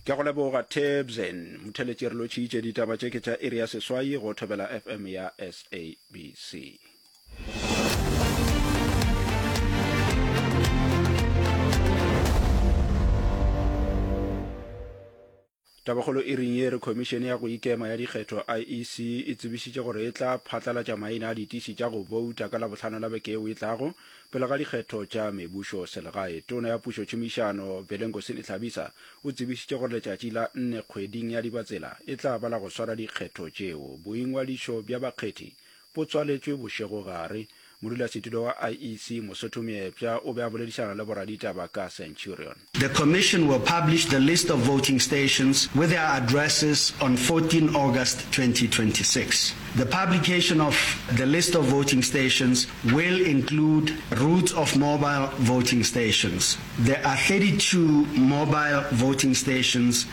ke go leboga tebsen motheletši re lotšhiitše ditaba tše ke tša iri ya seswai go thobela fm ya sabc Tabakgolo e reng ye re Khomišene ya go Ikema ya Dikgetho, IEC, e tsebišitše gore e tla phatlalatša maina a ditiši tša go bouta ka Labohlano la beke yeo e tlago pele ga dikgetho tša mebušo selegae. Tona ya Pušo Tšhomišano, Belengosini Hlabisa, o tsebišitše gore letšatši la nne kgweding ya Dibatsela e tla ba la go swara dikgetho tšeo. Boingwadišo bja bakgethi bo tswaletšwe bošegogare. Modulasetulo wa IEC, Mosotho Meepša, o be a boledišana le boraditaba ka Centurion. The Commission will publish the list of voting stations with their addresses on 14 August 2026. The publication of the list of voting stations will include routes of mobile voting stations. There are 32 mobile voting stations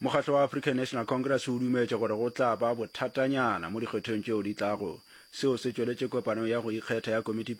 Mokgatlo wa African National Congress o dumetše gore go tla ba bothatanyana mo dikgethong tšeo di tlago. Seo se tšweletše kopano ya go ikgetha ya Komiti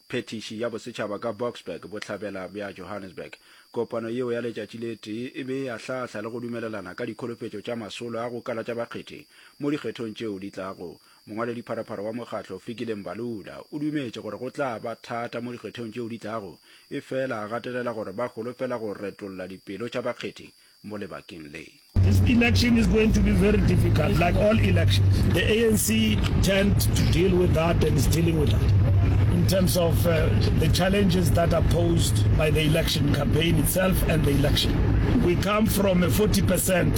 Phethiši ya Bosetšhaba ka Boksburg, Bohlabela bja Johannesburg. Kopano yeo ya letšatši le tee e be e ahlaahla le go dumelelana ka dikholofetšo tša masolo a go kala tša bakgethi mo dikgethong tšeo di tlago. Mongwaladipharapara wa mokgatlo Fikile Mbalula o dumetše gore go tla ba thata mo dikgethong tšeo di tlago efela a gatelela gore ba holofela go retolla dipelo tša bakgethi mo lebakeng le. This election is going to be very difficult like all elections. The ANC tend to deal with that and is dealing with that in terms of uh, the challenges that are posed by the election campaign itself and the election. We come from a 40%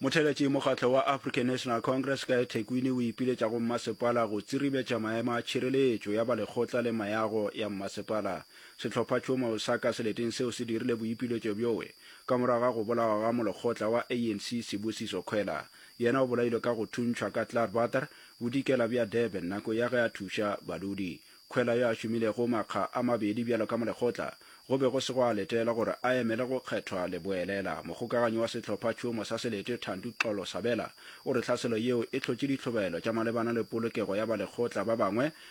motheletši mokgatlo wa african national congress ka ethekwini o ipiletša go mmasepala go tsiribetša maemo a tšhireletšo ya balekgotla le mayago ya mmasepala sehlopha tšoma o sa ka seleteng seo se dirile boipiletšo bjoe ka morago ga go bolawa ga molekgotla wa anc sebusiso kgwela yena o bolailwe ka go thuntšhwa ka clarbater Bodikela bja Durban nako ya ge a thuša badudi. Khwela yo a šomilego makga a mabedi bjalo ka molekgotla, go be go se gwa letelwa gore a emele go kgethwa leboelela. Mogokaganyi wa sehlophatšhomo sa Selete, Thandi Xolo Sabela, o re tlhaselo yeo e hlotše ditlhobaelo tša malebana le polokego ya balekgotla ba bangwe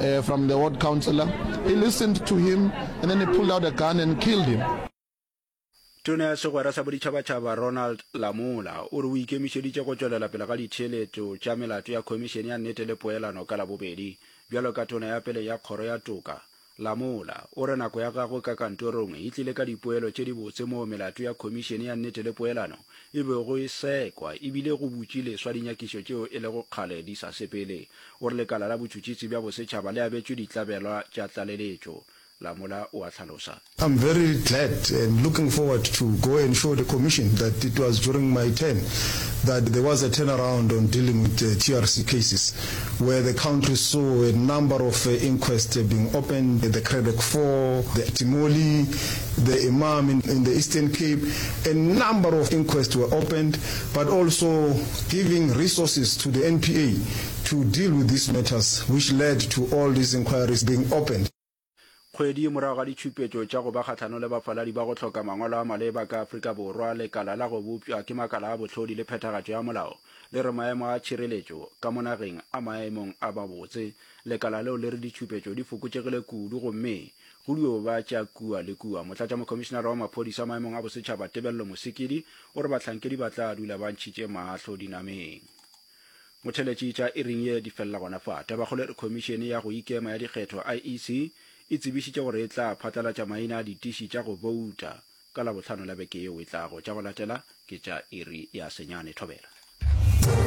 uh, from the ward councillor. He listened to him and then he pulled out a gun and killed him. Tona ya segwera sa boditšhabatšhaba Ronald Lamola o re o ikemišeditše go tšwelela pele ga ditheeletšo tša melato ya Khomišene ya Nnete le Poelano ka Labobedi. Bjalo ka tona ya pele ya Kgoro ya Toka, Lamola o re nako ya gagwe ka kantorong e tlile ka dipoelo tše dibotse moo melato ya Khomišene ya Nnete le Poelano e bego e sekwa e bile go butši leswa dinyakišo tšeo e lego kgale di sa sepele. O re lekala la botšhutšhisi bja bosetšhaba le abetšwe ditlabelwa tša tlaleletšo. Lamola o a hlalosa. I'm very glad and looking forward to go and show the Commission that it was during my term that there was a turnaround on dealing with TRC cases where the country saw a number of inquests being opened, the Cradock Four, the Timoli the Imam in in the Eastern Cape, a number of inquests were opened, but also giving resources to the NPA to deal with these matters, which led to all these inquiries being opened. Kgwedi morago ga ditšhupetšo tša go ba kgahlano le bafaladi ba go hloka mangwalo a maleba ka Afrika Borwa, lekala la go bopšwa ke makala a bohlodi le phethagatšo ya molao le re maemo a tšhireletšo ka mo nageng a maemong a mabotse. Lekala leo le re ditšhupetšo di fokotšegile kudu gomme Go dio ba tša kua le kua. Motlatšamokhomišinara wa Maphodisa a Maemong a Bosetšhaba Tebello Mosekedi o re bahlankedi ba tla dula ba ntšhitše mahlo dinameng. Motheletši tša iring ye di felela gona fa. Tabakgolo e re Khomišene ya go Ikema ya Dikgetho, IEC, e tsebišitše gore e tla phatlalatša maina a ditiši tša go bouta ka Labohlano la beke yeo e tlago. Tša go latela ke tša iri ya senyane thobela.